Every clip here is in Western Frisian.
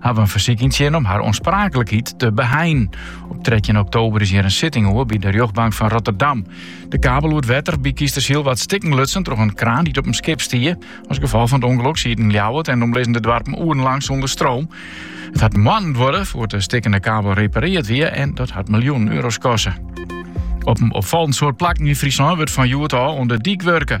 hawwe in fersyk yntsjinne om har oanspraaklikheid te beheinen. Op 13 oktober is hjir in sitting oer by de rjochtbank fan Rotterdam. De kabel oer it wetter by Kiestersyl waard stikken lutsen troch in kraan dy't op in skip stie. As gefolch fan it ûngelok sieten Ljouwert en omlizzende doarpen oerenlang sûnder stroom. It hat moannen duorre foar't de stikkene kabel reparearre wie en dat hat miljoenen euro's koste. Op in opfallend soad plakken yn Fryslân wurdt fan hjoed ôf oan de dyk wurke.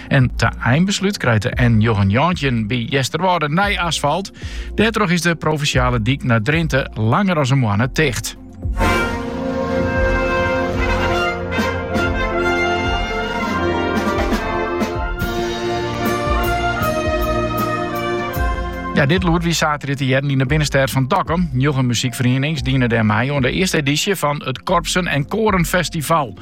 En ta einbeslút krijt de N919 by Easterwâlde nij asfalt. Dêrtroch is de provinsjale dyk nei Drinte langer as in moanne ticht. Ja, dit lûd wie saterdei te hearren yn de binnenstêd fan Dokkum. Njoggen muzykferienings diene dêr mei oan de earste edysje fan it Korpsen en Koren Festival.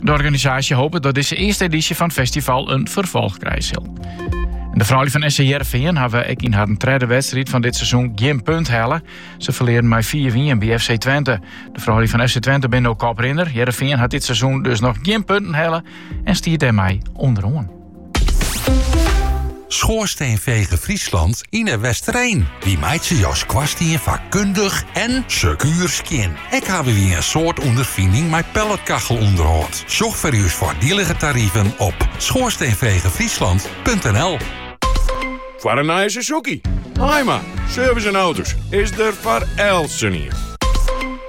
De organisaasje hopet dat dizze earste edysje fan it festival in ferfolch krije sil. En de froulju fan SC Hearrenfean hawwe ek yn harren tredde wedstriid fan dit seizoen gjin punt helle. Se ferlearen mei 4-1 by FC Twente. De froulju fan FC Twente binne no koprinner. Hearrenfean hat dit seizoen dus noch gjin punten helle en stiet dêrmei ûnderoan. Schoorsteenveger Friesland yn 'e Westereen. Wy meitsje jo skoarstien fakkundich en sekuer skjin. Ek hawwe wy in soad ûnderfining mei pelletkachelûnderhâld. Sjoch foar ús foardielige tariven op schoorsteenvegerfriesland.nl. Foar in nije Suzuki, Haaima, Service en Auto's is der foar eltsenien.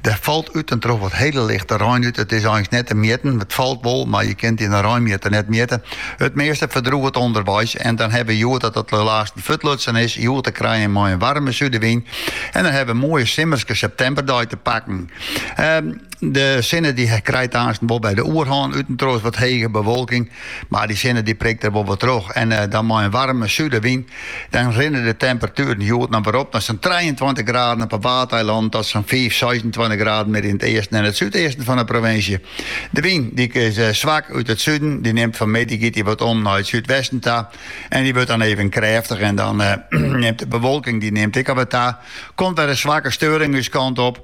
Der falt út en troch wat hele lichte rein út. It is eins net te mjitten. It falt wol, mar je kinne it yn in reinmjitter net mjitte. It measte ferdroget ûnderweis en dan hawwe we hjoed dat as dat lêste fuortlutsen is, hjoed te krijen mei in waarme súdewyn. En dan hawwe we in moaie simmerske septemberdei te pakken. De sinne die krijt aansten wol by de oerhân, út en troch wat hege bewolking. Mar dy sinne dy prikt der wol wat troch en dan mei in waarme súdewyn, dan rinne de temperatueren hjoed noch wer op nei sa'n trijeentweintich graden op 'e Waadeilannen tot sa'n fiif, seisentweintich graden mear yn it easten en it súdeasten fan 'e provinsje. De wyn dy is swak út it suden, dy nimt fan middei giet dy wat om nei it súdwesten ta en dy wurdt dan even krêftich en dan nimt de bewolking dy nimt ek al wat ta, komt wer in swakke steuring ús kant op.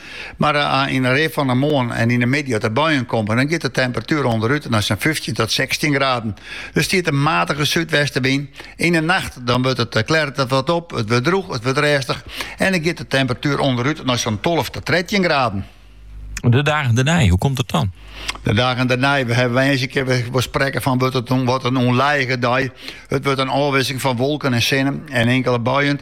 Mar yn de rin fan 'e moarn en yn 'e middei as de buien komme, dan giet de temperatuer ûnderút nei sa'n fyftjin tot sechstjin graden. Der stiet in matige súdwestewyn. Yn 'e nacht dan wurdt it klêret it wat op, it wurdt drûch, it wurdt rêstich en dan giet de temperatuer ûnderút nei sa'n tolve tot trettjin graden. De dagen dêrnei, hoe komt it dan? De dagen dêrnei, we hawwe woansdei kinne we sprekke fan wurdt it in, wat in ûnlijige dei. It wurdt in ôfwikseling fan wolken en sinne en inkelde buien.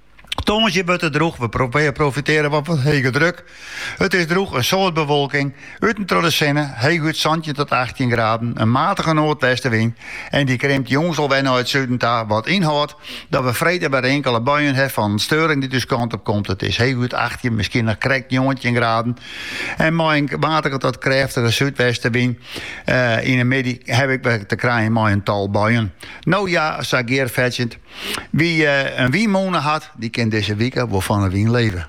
Tongersdei wurdt it drûch, we profitearje wat fan hege druk. It is drûch, in soad bewolking, út en troch de sinne, heechút santjin tot achttjin graden, in matige noardwestewyn en dy krimt jûns al wer nei it suden ta, wat ynhâldt dat we freed wer inkele buien ha fan steuring dy't ús kant op komt. It is heechút achttjin, miskien noch krekt njoggentjin graden en mei in matige tot krêftige súdwestewyn yn de middei ha we ek wer te krijen mei in tal buien. No ja, sa gearfetsjend. Wa't in wynmûne hat, dy kin dizze wike wol fan 'e wyn leve.